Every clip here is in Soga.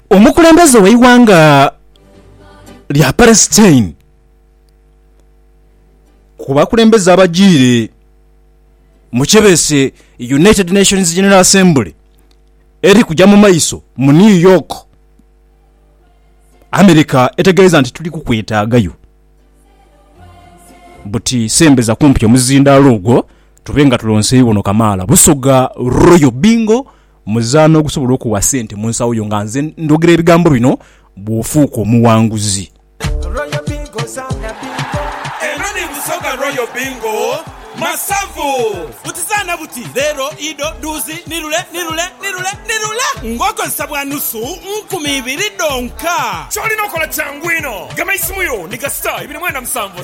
Omukulembeze w'eighanga lya Palestine ku bakulembeze abajiire mu kyebeese United Nations General Assembly eri kuja mu maiso mu New York, America etegeeza nti tuli kukwetaagayo buti sembeza kumpi omuzindaalo ogwo tube nga tulonseyo ono kamaala. Busoga Royal Bingo. Muzaano ogusobola okuwa sente mu nsawo yo nga nze ndhogera ebigambo bino bw'ofuuka omuwanguzi. Royal Bingo zaana bingo. Eno ni Busoga Royal Bingo masavu. Buti zaana buti, leero, idho, dhuuzi, ni lule, ni lule, ni lule, ni lule ng'okozesa bwa nusu nkumi ibiri dhonka. Ky'olina okola kyangu inho. Gema eisimu yo ni kasita ibiri mwenda musanvu.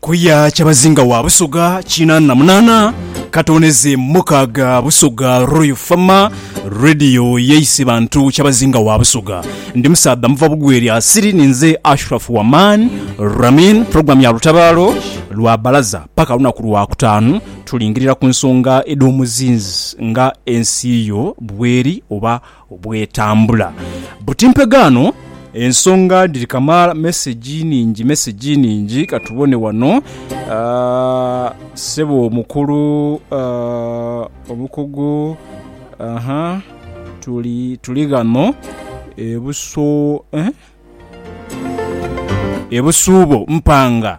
Kuya Kyabazinga wa Busoga kinaana na munaana katoneze mukaaga Busoga Royal Fama Radio yeise bantu Kyabazinga wa Busoga ndi musaadha muva bugweri asiri ninze Ashraf Waman Ramin program ya lutabaalo lwa balaza paka lunaku lwa kutaanu Tulingirira ku nsonga edh'omuzinzi nga ensi yo bweri oba bw'etambula. Buti mpegaano ensonga dhiri kamaala. Mesegi nhingi, mesegi nhingi. Ka tubone wano. Ssebo omukulu, omukugu, aha, tuli, tuli ghano e Buso, eh? E Busuubo mpanga.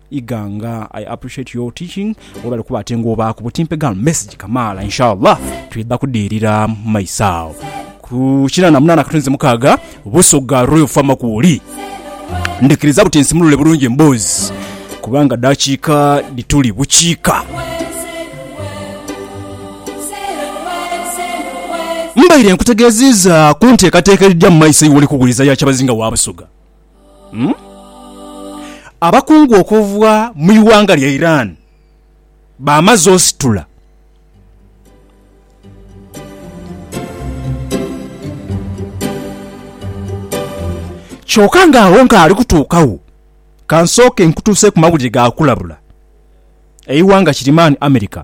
Iganga I appreciate your teaching webale kuba atenga obaaku butimpe gal message kamaala inshallah twidha kudhirira mumaiso agho ku kinana munana katonze mukaaga Busoga Royal Farm kwoli ndhikiriza buti nsimulule bulungi emboozi kubanga dhakiika dhituli bukiika Mbaire nkutegeziiza kunteekateeka edhija mumaiso iwe oli kughuliza ya Kyabazinga wa Busoga. Abakungu okuva mu ighanga lya Iran bamaze ositula. Kyoka nga agho nkaali kutuukagho, ka nsooke nkutuuseeku mawulire ga kulabula. Eighanga kiri mani America.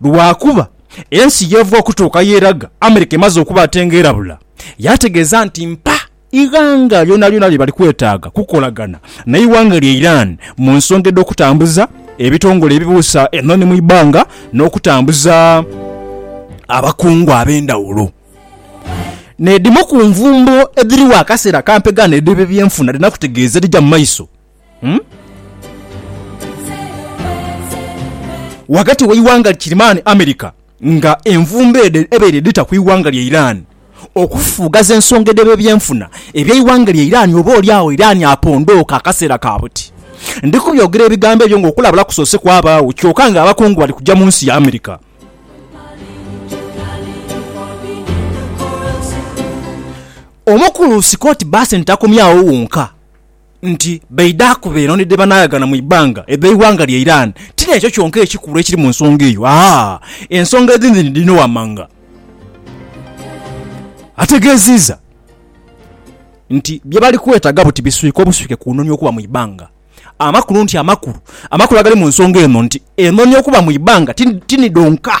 lwakuba ensi yeeva okutuuka yeeraga America emaze okuba ate nga erabula yaategeeza nti mpa ighanga lyonalyona lye bali kwetaaga kukolagana n'eighanga lya Iran mu nsonga edh'okutambuza ebitongole ebibuusa enhonhi mu ibbanga n'okutambuza abakungu ab'endhawulo n'edhimu ku nvumbo edhiriwo akaseera kampegaano edh'ebyebyenfuna dhirina kutegeeza ebija mu maiso. ghagati w'eighanga li Kirimani America nga envumbo edho ebaire dhita ku ighanga lya Iran okufufugaza ensonga edh'ebebyenfuna eby'eighanga lya Iran oba oli agho Iran apondooke akaseera ka buti. Ndi kubyogera ebigambo ebyo nga okulabula kusoose kwabaagho kyoka nga abakungu bali kuja mu nsi ya America. Omukulu Scott Bessent takomye agho wonka. nti baidha kuba eno ni dhebanaaghagana mu ibanga edh'eighanga lya Iran. Ti n'ekyo kyonka ekikulu ekiri mu nsonga eyo. Aa, ensonga edhindi ni dhino wammanga. Ategeeziiza nti bye bali kwetaaga buti biswika obuswike ku nonia okuba mu ibanga. Amakulu nti amakulu, amakulu agali mu nsonga eno nti enonia okuba mu ibanga ti ni dhonka.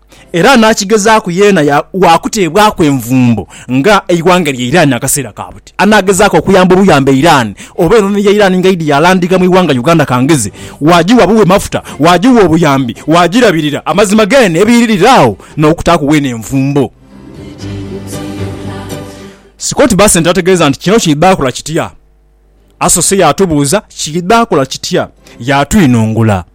Era anaakigezaaku yeena waakuteebwaku envumbo nga eighanga lya Iran akaseera ka buti. Anaagezaaku okuyamba obuyambi Iran oba enono ya Iran ng'eidhi yaalandika mu ighanga Uganda kangeze, waagiwa buwi mafuta, waagiwa obuyambi, waagirabirira, amazima geene ebiiririre agho n'okutaaku weena envumbo. Scott Bessent ategeeza nti kino kiidha kola kitya? Asoose yaatubuuza kiidha kola kitya, yaatwinhongula.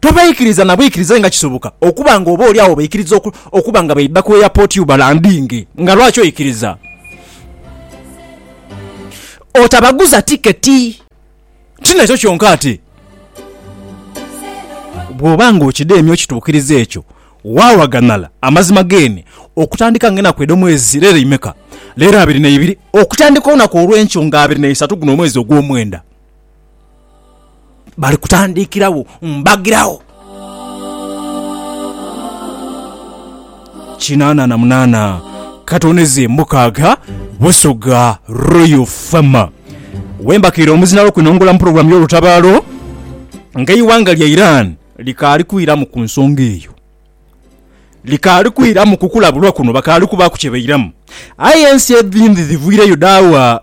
Tobaikiriza na bwikiriza aye nga kisoboka okuba nga oboolyawo obaikiriza okuba nga baidha ku airport you balandinge. Nga lwaki oikiriza? Otabaguza tiketi. Ti nakyo kyonka ate bw'oba nga okidheemye okituukiriza ekyo, waawaghanala amazima geene okutandika nga enaku edh'omwezi leero imeka? Leero abiri na ibiri. Okutandika olunaku olw'enkyo nga abiri na isatu guno omwezi ogw'omwenda. Bali kutandikiragho mbagiragho. Kinaana na munaana katoneze mukaaga Busoga Royal Fama wembakiire omuzinalo kwinongora mu pulogulaamu y'olutabaalo nga eighanga lya Iran likaali kwiramu ku nsonga eyo likaali kwiramu kukulabulwa kuno bakaali kubaaku kyebairamu aye ensi edhindi dhivwireyo dhaawa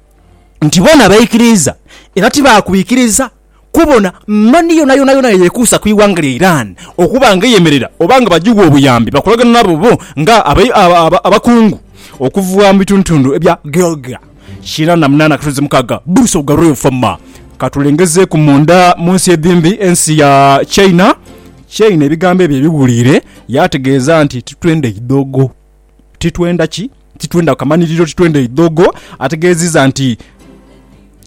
nti bona baikiriiza era tibakwikiriza kubona mani yonayona yona eyekuusa ku ighanga lya Iran okuba nga eyemerera oba nga bajiwa obuyambi bakolagana nabo bo nga abakungu okuva mu bitundutundu ebya Georgia kina na munana katonzi mukaga Bruce Ogarev former Katulengezeeku munda mu nsi edhimbi ensi ya China China ebigambo ebyo ebiwuliire yaategeeza nti titwenda idhoogo. titwenda ki titwenda kamaniriro titwenda idhogo ategeziza nti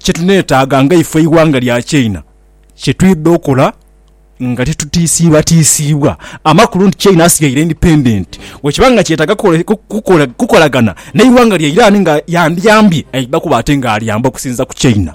kyetunetaaga nga ife eighanga lya China kyetwidha okola nga titutiisiibwa tiisiibwa amakulu nti China asigaire independent wekiba nga kyetaaga kukole- ku- kukole- kukolagana neighanga lya Iran nga yandiyambye aidha kuba ate nga alyamba okusinza ku China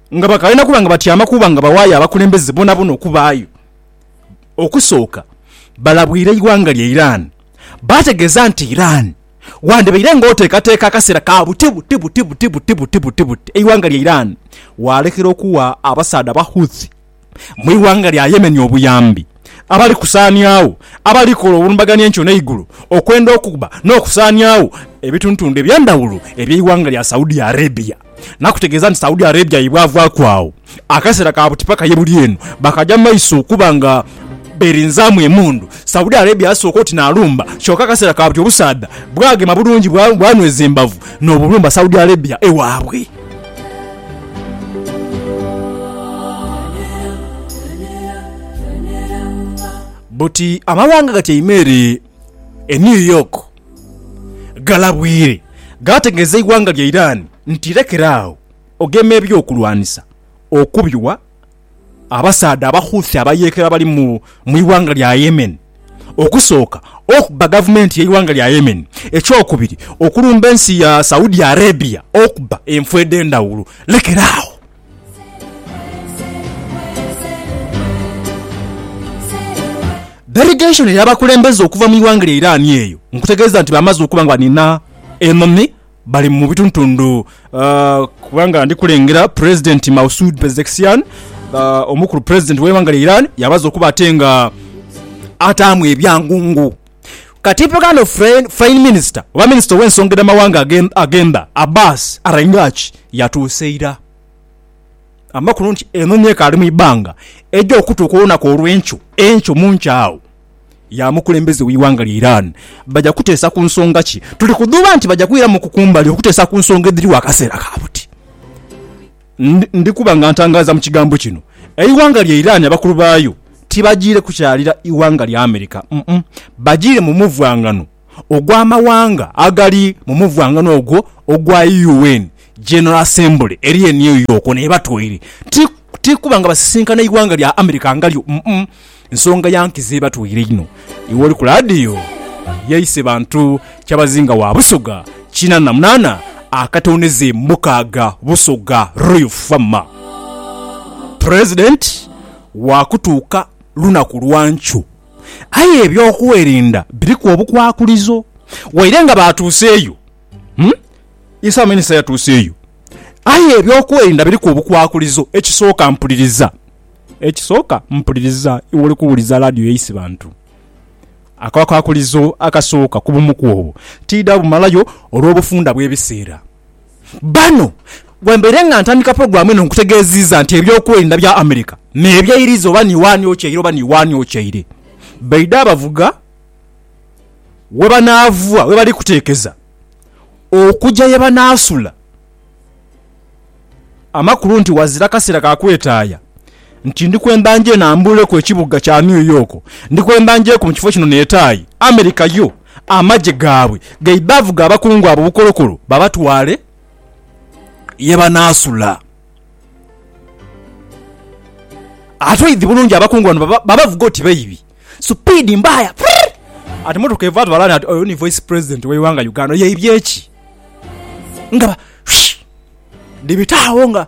Nga bakalina kuba nga batyama kuba nga bawaayo abakulembeze bonabona okubaayo, okusooka balabwire eighanga lya Iran baategeeza nti Iran wandibaire nga oteekateeka akaseera ka buti buti buti buti buti buti buti buti eighanga lya Iran waalekera okuwa abasaadha Abahouthi mu ighanga lya Yemen obuyambi abali kusaaniagho abali kola obulumbaganhi enkyo n'eigulu okwenda okukuba n'okusaaniagho ebitundutundu eby'endhawulo eby'eighanga lya Saudi Arabia nakutegeeza nti Saudi Arabia yebwavaaku agho akaseera ka buti paka yebuli eno bakaja mu maiso okuba nga berinzaamu emundu Saudi Arabia yasooka oti nalumba kyoka akaseera ka buti obusaadha bwagema bulungi bwanweza embavu n'obulumba Saudi Arabia ewaabwe. Buti amawanga gatyaime ere e New York galabwire gaategeeza eighanga lya Iran nti lekera agho ogema eby'okulwanisa okubiwa. Abasaadha Abahouthi abayeekera abali mu ighanga lya Yemen, okusooka okuba gavumenti y'eighanga lya Yemen, ekyokubiri okulumba ensi ya Saudi Arabia okuba enfo edh'endhawulo. Lekera agho. Delegation ey'abakulembeze okuva mu ighanga lya Iran eyo nkutegeeza nti baamaze okuba nga baniina enhonhi Bali mu bituntundu kubanga ndi kulengera Pulezidenti Mausud Pezeshkian, omukulu pulezidenti w'eighanga lya Iran yabaza okuba ate nga ataamu ebyangungu. Katipu kano Foreign Minister oba Minisita ow'ensonga edh'amawanga agemba, Abbas Araghchi yatuuse ira. Amakulu nti enonia ekaali mu ibanga eja okutuuka olunaku olw'enkyo enkyo mu nkya agho. ya mukulembeze w'eighanga lya Iran baja kuteesa ku nsonga ki? Tuli kudhuuba nti baja kwiramuku ku mbali okuteesa ku nsonga edhiriwo akaseera ka buti. Ndi kuba nga ntangaaza mu kigambo kino, eighanga lya Iran abakulu baayo tibajiire kukyalira ighanga lya America, bajiire mu muvwangano. ogw'amawanga agali mu muvwangano ogwo ogwa UN General Assembly eri e New York n'ebatwaire. Ti, ti kuba nga basisinkana eighanga lya America nga lyo, mm-mm. Nsonga ya nkizo ebatwaire inho. Iwe oli ku laadiyo, yaise bantu kyabazinga wa Busoga kina na munaana akatondeze mukaaga Busoga Royal Fama. President waakutuuka lunaku lwa nkyo. Aye eby'okwerinda biriku obukwakulizo. Waire nga baatuuseeyo, Isa Minisita yatuuseeyo, aye eby'okwerinda biriku obukwakulizo. Ekisooka mpuliriza, ekisooka mpuliriza iwe oli kuwuliza laadiyo ya Isibantu. Akakwakulizo akasooka ku bumuku obwo tiidha bumalayo olw'obufunda bw'ebiseera. Bano wembeire nga ntandika pulogulaamu eno nkutegeeziiza nti eby'okwerinda bya America n'ebyeiriza oba ni waani okyeire oba ni waani okyeire baidha bavuga we banaava we bali kuteekeza okuja ye banaasula amakulu nti wazira kaseera ka kwetaaya nti ndi kwemba nje nambuuleku ekibuga kya New York ndi kwemba njeku mu kifo kino neetaaye America yo Amagye gaabwe gaidha avuga abakungu abo bukolokolo babatwale ye banaasula. Ate oidhi bulungi abakungu bano babavuga oti baibi. Supiidi mbaaya frrrr! Ati mmotoka evaayo tubalaane ati oyo ni Vice President w'eighanga Uganda. Oyo aibye ki? Nga ba shhh! Dhibita agho nga.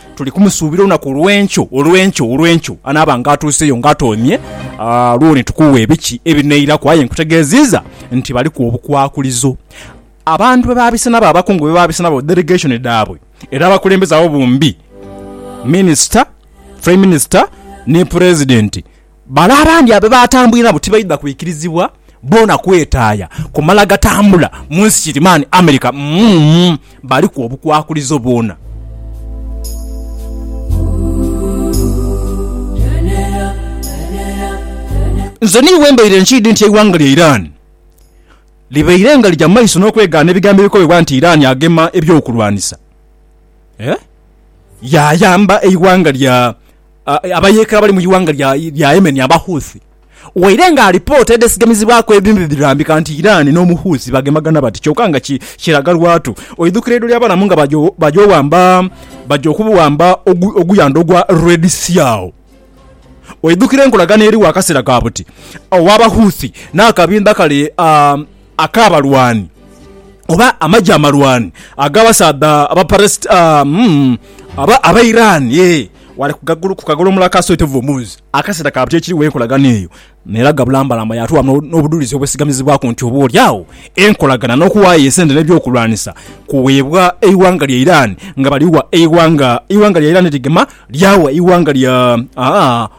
Tuli kumusuubira olunaku olw'enkyo, olw'enkyo, olw'enkyo, anaaba nga atuuseyo nga atoomye, lwo ni tukuwa ebiki ebinairaku. Aye nkutegeeziiza nti baliku obukwakulizo abantu bwe baabise nabo, abakungu be baabise nabo, delegation dhaabwe, era abakulembeze abo bombi, minisita, prime minister, ni pulezidenti, Bale abandi abe baatambwire nabo tibaidha kwikirizibwa boona kwetaaya kumala gatambula mu nsi kirimaani America. Umm baliku obukwakulizo bwona. Nze niiwe mbaire nkiidhi nti eighanga lya Iran libaire nga lija mu maiso n'okwegaana ebigambo ebikobebwa nti Iran agema eby'okulwanisa, yaayamba eighanga lya. Abayeekera abali mu ighanga lya Yemen aba Houthi waire nga alipoota edhesigamizibwaku edhindhi dhirambika nti Iran n'Omuhouthi bagemagana bati kyoka nga kiraga lwatu oidhukira eidho ly'abalamu nga baja okuwamba oguyandho ogwa Red Sea agho oidhukira enkolagana eriwo akaseera ka buti ogh'Abahouthi n'akabinha kale Ak'abalwani, oba amagye amalwani ag'abasaadha Abairani, yee, ghale ku kagulu, ku kagolomola aka Swetev Omuz. Akaseera ka buti ekiriwo enkolagana eyo n'eraga bulambalamba yaatuwa n'obudhulizi obwesigamizibwaku nti oboolyawo enkolagana n'okuwaayo esente n'ebyokulwanisa kuweebwa eighanga lya Iran nga baliwa eighanga lya Iran ligema lyawa eighanga lya